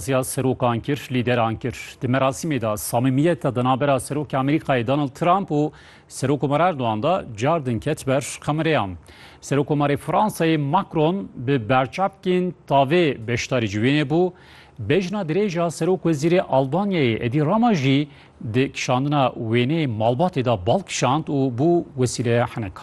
Ziya serokan kir, lîderan kir. Di merasîmê de samîmiyeta di navbera Serokê Amerîkayê Donald Trump û Serokkomar Erdogan de car din ket ber kamereyan. Serokkomarê Fransayê Macron bi berçavkên tavê beşdarî ji wênê bû. Bejna dirêj a Serokwezîrê Albanyayê Edî Rama jî di kişandina wêneyê malbatê de bal kişand û bû wesîleya heneka.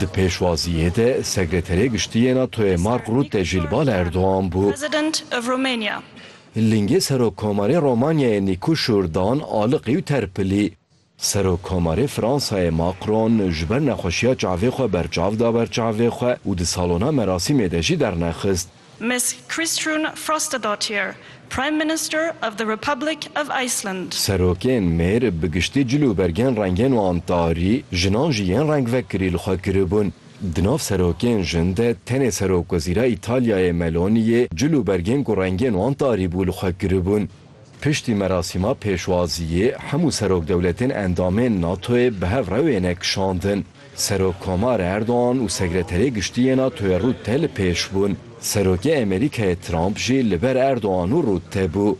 Di pêşwaziyê de Sekreterê Giştî yê NATO'yê Mark Rutte jî li bala Erdogan bû. Lingê Serokkomarê Romanyayê Nîku Şûrdan aliqî û terpilî. Serokkomarê Fransayê Macron ji ber nexweşiya çavê xwe berçav da ber çavê xwe û di salona merasîmê de jî dernexist. Ms Kristrún Frostadóttir, Prime Minister of the Republic of Iceland. Serokên mêr bi giştî cil û bergên rengên wan tarî, jinan jî yên rengvekirî li xwe kiribûn. Di nav serokên jin de tenê Serokwezîra Îtalyayê Meloniyê cil û bergên ku rengên wan tarî bû li xwe kiribûn. Piştî merasîma pêşwaziyê hemû serokdewletên endamên NATO'yê bi hev rewêne kişandin. Serokkomar Erdogan û Sekreterê Giştî yê NATO'yê Rutte li pêş bûn. Serokê Amerîkayê Trump jî li ber Erdogan û Rutte bû.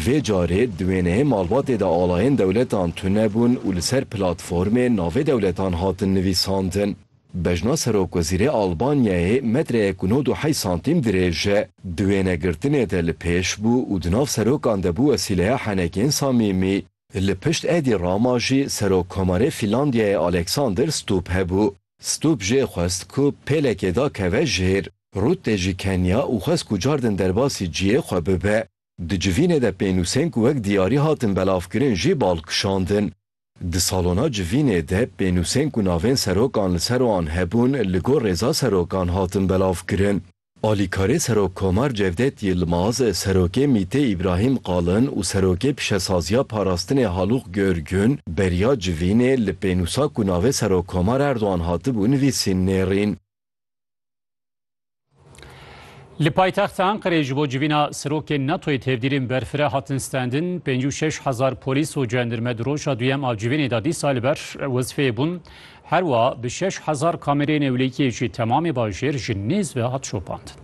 Vê carê di wêneyê malbatê de alayên dewletan tune bûn û li ser platformê navê dewletan hatin nivîsandin. Bejna Serokwezîrê Albanyayê metreyek û nod û heyş santîm dirêj e. Di wênegirtinê de li pêş bû û di nav serokan de bû wesîleya henekên samîmî. Li pişt Edi Rama jî Serokkomarê Fînlandiyayê Aleksander Stubb hebû. Stubb jê xwest ku pêlekê da keve jêr. Rutte jî keniya û xwest ku cardin derbasî ciyê xwe bibe. Di civînê de pênûsên ku wek diyarî hatin belavkirin jî bal kişandin. Di salona civînê de pênûsên ku navên serokan li ser wan hebûn li gor rêza serokan hatin belavkirin. Alîkarê Serokkomar Cevdet Yilmaz, Serokê MĪT'ê Îbrahîm Qalin û Serokê Pişesaziya Parastinê Halûq Görgün, beriya civînê li pênûsa ku navê Serokkomar Erdogan hatibû nivîsîn nêrîn. Li paytexta Enqereyê ji bo civîna serokên NATO'yê tevdîrên berfireh hatin stendin, pêncî û şeş hezar polîs û cendirme di roja duyem a civînê de dîsa li ber wezfeyê bûn. Her wiha bi şeş hezar kamereyên ewlekiyê jî temamê bajêr ji nêz ve hat şopandin.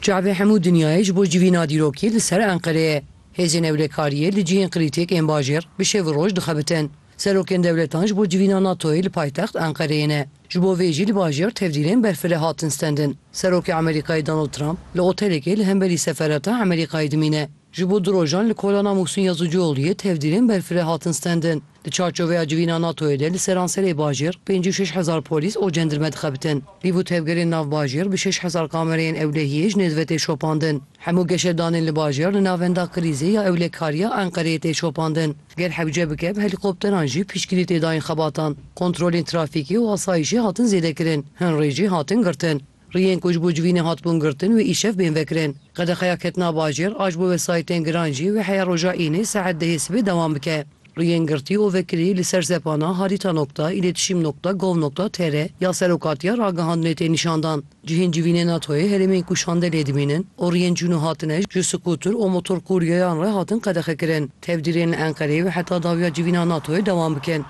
Çavê hemû dinyayê ji bo civîna dîrokî li ser Enqerê ye. Hêzên ewlekariyê li cihên krîtîk ên bajêr bi şev û roj dixebitin. Serokên dewletan ji bo civîna NATO'yê li paytext Enqereyê ne. Ji bo vê jî li bajêr tevdîrên berfireh hatin stendin. Serokê Amerîkayê Donald Trump li otelekê li hemberî seferata Amerîkayê dimîne. Ji bo du rojan li kolana Muhsîn Yazıcıoğlu'yê tevdîrên berfireh hatin stendin. Di çarçoveya civîna NATO'yê de li seranserê bajêr pêncî û şeş hezar polîs û cendirme dixebitin. Pîv û tevgerên nav bajêr bi şeş hezar kamereyên ewlehiyê ji nêzve tê şopandin. Hemû geşedanên li bajêr li navenda krîzê ya ewlekariya Enqereyê tê şopandin. Ger hewce bike bi helîkopteran jî piştgirî tê dayîn xebatan. Kontrolên trafîkê û asayîşê hatin zêdekirin, hin rê jî hatin girtin. Riyên ku ji bo civînê hatibûn girtin wê îşev bên vekirin. Qedexeya ketina bajêr a ji bo wesayîtên giran jî wê heya roja Înê saet dehê sibê dewam bike. Riyên girtî û vekirî li ser sepana harita nokta îletişîm nokta gov nokta tr ya Serokatiya Ragihandinê tê nîşan dan. Cihên civînê NATO'yê herêmên ku şande lê dimînin û riyên çûn û hatine ji skutur û motorkûryeyan re hatin qedexekirin, tevdîrên li Enqereyê wê heta dawiya civîna NATO'yê dewam bikin.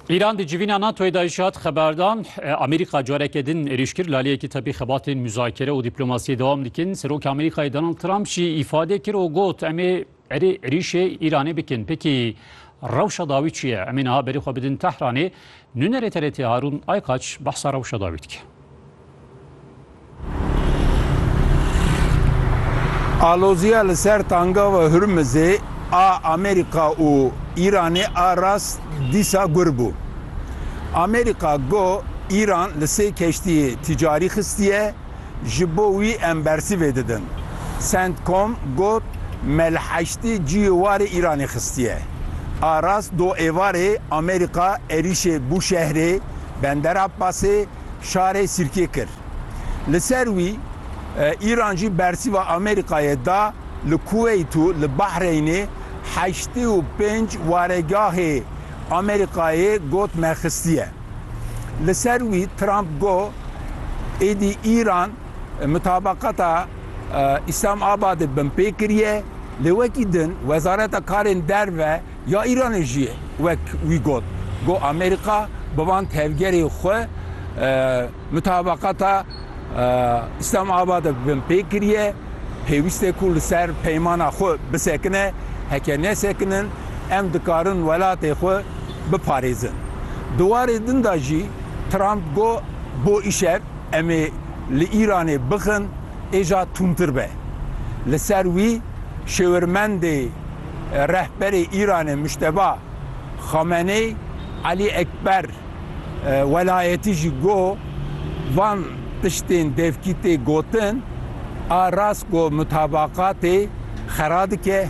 Îran di civîna NATOyê de jî hat xeberdan Amerîka careke din êrîş kir laliyekî tepî xebatên muzakere û dîplomasiyê dewam dikin. Serokê Amerîkayê Donald Trump jî îfade kir û got em ê erê êrîşê Îranê bikin. Pekî rewşa dawî çi ye? Em ê niha berî xwe bidin Tehranê Nûnerê TRT'ê Harûn Aykaç behsa rewşa dawî dike. Aloziya li ser Tangava Hurmizê a Amerîka û Îranê a rast dîsa gur bû. Amerîka got Îran li sê keştiyê tîcarî xistiye, ji bo wî em bersivê didin. Centcom got me li heştê cihê warê Îranê xistiye. A rast do êvarê Amerîka êrîşê Bûşehrê, Bender Abbasê, şarê Sirkê kir. Li ser wî Îran jî bersîva Amerîkayê da li Kuweyt û li Bahreynê heştê û pênc waregahê Amerîkayê got me xistiye. Li ser wî Trump got, Êdî Îran mutabaqata Îslamabadê binpê kiriye, lê wekî din Wezareta Karên Derve ya Îranê jî wek wî got ku Amerîka bi van tevgerê xwe mutabaqata Îslamabadê binpê kiriye, pêwîst e ku li ser peymana xwe bisekine, heke nesekinin em dikarin welatê xwe biparêzin. Di warê din de jî Trump got bo îşev em ê li Îranê bixin êja tundtir be. Li ser wî şêwirmendê rehberê Îranê Muşteba Xameney Elî Ekber Welayetî jî got van tiştên devkî tê gotin a rast ku mutabaqatê xera dike.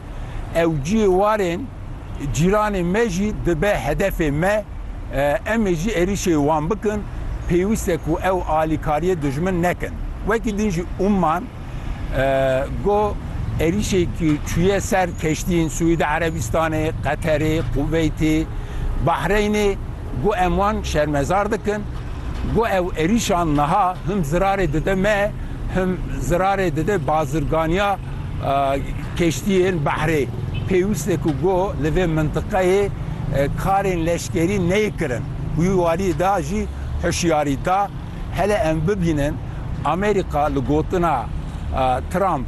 Ew cihê warên cîranê me jî dibe hedefê me. Em ê jî êrîşê wan bikin. Pêwîst e ku ew alîkariyê dijmin nekin. Wekî din jî Umman got êrîşekî çûye ser keştiyên Sûîdî Erebîstanê, Qeterê, Kuveytê, Bahreynê. Got em wan şermezar dikin. Got ew êrîşan niha him zirarê dide me, him zirarê dide bazirganiya. Keştiyên behrê pêwîste ku goh li vê mintiqeyê karên leşkerî neyê kirin. Wî warî da jî hişyarî da, hele em bibînin Amerîka li gotina Trump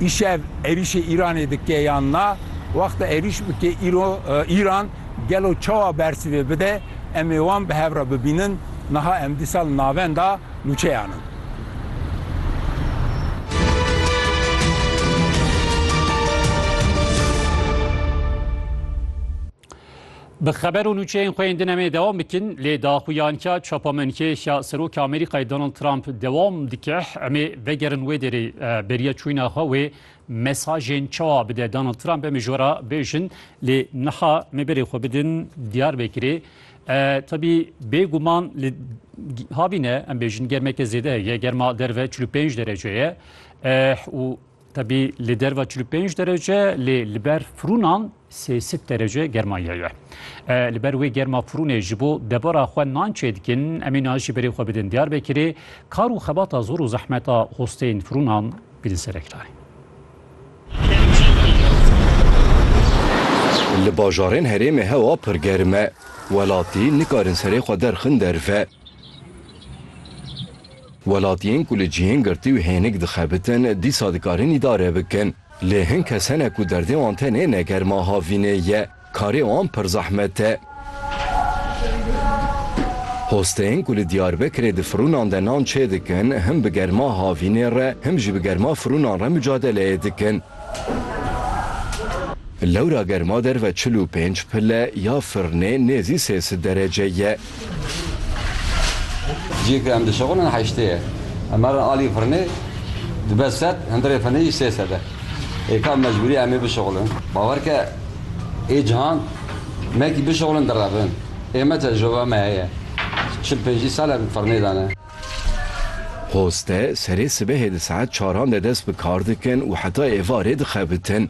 îşev êrîşê Îranê dike yan na, wexta êrîş bike Îran gelo çawa bersivê bide, em ê wan bi hev re bibînin, niha em dîsa li navenda nûçeyan in. Bi xeber û nûçeyên xwe yên din em ê dewam bikin lê daxuyanîya çapamenkêya Serokê Amerîkayê Donald Trump dewam dike. Em ê vegerin wê derê beriya çûyîna xwe wê mesajên çawa bide Donald Trump em ê ji we re bêjin lê niha em ê berê xwe bidin Diyarbekirê. Tebî bê guman li havîne em bêjin germeke zêde heye germa derve 45 derece ye û tebî li derva 45 derece lê li ber firûnan sêsit derece germaya ye. Li ber wê germa firûnê ji bo debara xwe nan çê dikin emê na jî berê xwe bidin Diyarbekirê kar û xebata zor û zehmeta hosteyên firûnan bidin serekirayê. Li bajarên herêmê hewa pir germ e. Welatî nikarin serê xwe derxin derve. Welatiyên ku li cihên girtî û hênik dixebitin dîsa dikarin îdare bikin. Lê hin kes hene ku derdê wan tenê ne germa havînê ye. Karê wan pir zehmet e. Hosteyên ku li Diyarbekirê di firûnan de nan çêdikin, him bi germa havînê re, him jî bi germa firûnan re mucadeleyê dikin. Lewra germa derve çil û pênc pile ya firnê nêzî sê sid derece ye. Ciyê ku em dişixulin heştê ye. Em herin alî firinê dibe sed, hindirê firinê jî sê sed e. Hêka mecbûrî ye em ê bişixulin. Bawer ke ê cihan mekî bişixulin direvin. Ê me tecrûbe me heye. Çil pêncî sal e firinê de ne. Hoste serê sibehê di saet çaran de dest bi kar dikin û heta êvarê dixebitin.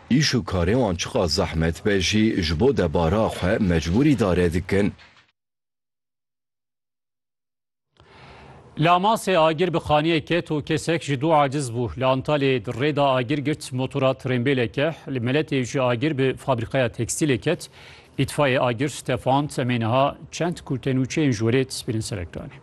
Îş û karê wan çiqas zehmet be jî ji bo debara xwe mecbûrî dare dikin. Li Amasê agir bi xaniyê ket û kesek ji dû aciz bû. Li Antalyayê di rê de agir girt motora trênbêleke. Li Meletê jî agir bi fabrîkaya tekstîlê ket. Îtfayê agir tefand. Em ê niha çend kurtenûçeyên ji werê destpê kirin ser ekranê.